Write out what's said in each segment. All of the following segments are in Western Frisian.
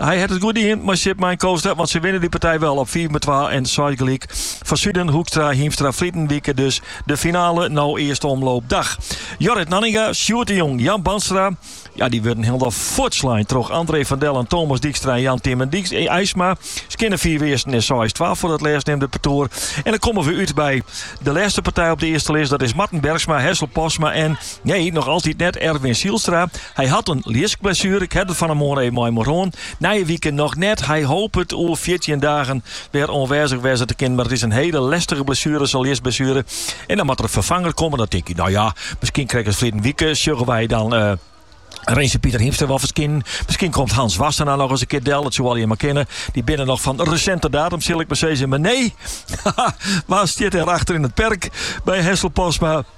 Hy hat it goed dien mei Sjit Mein Koolstra, want sy winne dy partij wel op fiif om twa en seis gelyk. Van Zuiden, Hoekstra, Hiemstra, ferline wike dus de finale no earste omloop dach. Jorrit Nanninga, Sjoerd de Jong, Jan Bandstra, ja, dy wurde hielendal fuortslein troch André van Dellen, Thomas Dijkstra en Jan Tymen Eisma. Skjinne fiif earsten en seis twa foar it lêstneamde partoer. En dan komme we út by de lêste partij op de earste list, dat is Marten Bergsma, Hessel Postma en Nee, noch altyd net Erwin Zijlstra. Hy hat in ljiskblessuere. Ik ha it der fan 'e moarn even mei him oer hân. Nije wike noch net. Hy hopet oer fjirtjin dagen wer oanwêzich wêze te kinnen. Mar it is in hiele lêstige blessuere, sa'n ljiskblessuere. En dan moat der in ferfanger komme. Dan tink ik, no ja, miskien krekt as ferline wike sjogge wy dan, uh, Renze Pieter Hiemstra wol ferskinen. Miskien komt Hans Wassenaar noch ris in kear del. Dat soe allegear mar kinne. Dy binne noch fan resinte datum, sil ik mar sizze. Mar nee, wa stiet der achter yn it perk by Hessel Postma?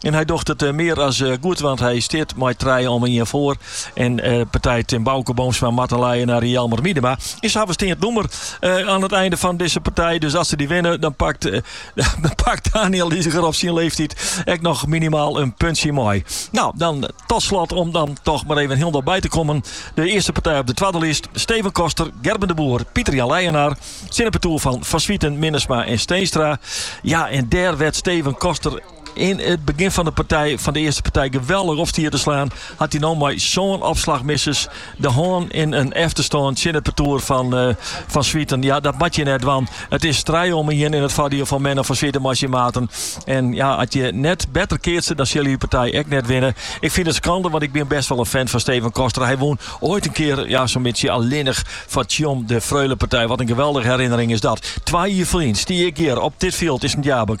En hy docht it mear as goed, want hy steat mei trije om ien foar. In partij tsjin Auke Boomsma, Marten Leijenaar, Jelmer Miedema en se hawwe steand nûmer aan it einde fan dizze partij. Dus as se dy winne, dan pakt Daniël Iseger op syn leeftiid ek noch minimaal in puntsje mei. No, dan tot slot om dan toch mar even hielendal by te kommen. De earste partij op de twadde list. Steven Koster, Gerben de Boer, Pieter Jan Leijenaar. Tsjin it partoer fan Van Zwieten, Minnesma en Steenstra. Ja, en dêr wêr't Steven Koster Yn it begjin fan de partij fan de earste partij geweldich op stie te slaan, hat hy no mei sân opslachmisses de hân yn in efterstân tsjin it partoer fan Van Zwieten. Ja, dat moatte je net dwaan. It is trije om ien yn it foardiel fan Menno van Zwieten mei syn maten. En ja, as je net better keatse, dan sille je dy partij ek net winne. Ik fyn it skande, want ik bin best wel in fan fan Steven Koster. Hy wûn ooit in kear, ja, sa'n bytsje allinnich foar Tsjom de Freulepartij. Wat in geweldige herinnering is dat. Twa jier ferlyn stie ik hjir op dit fjild yn Sint Jabik.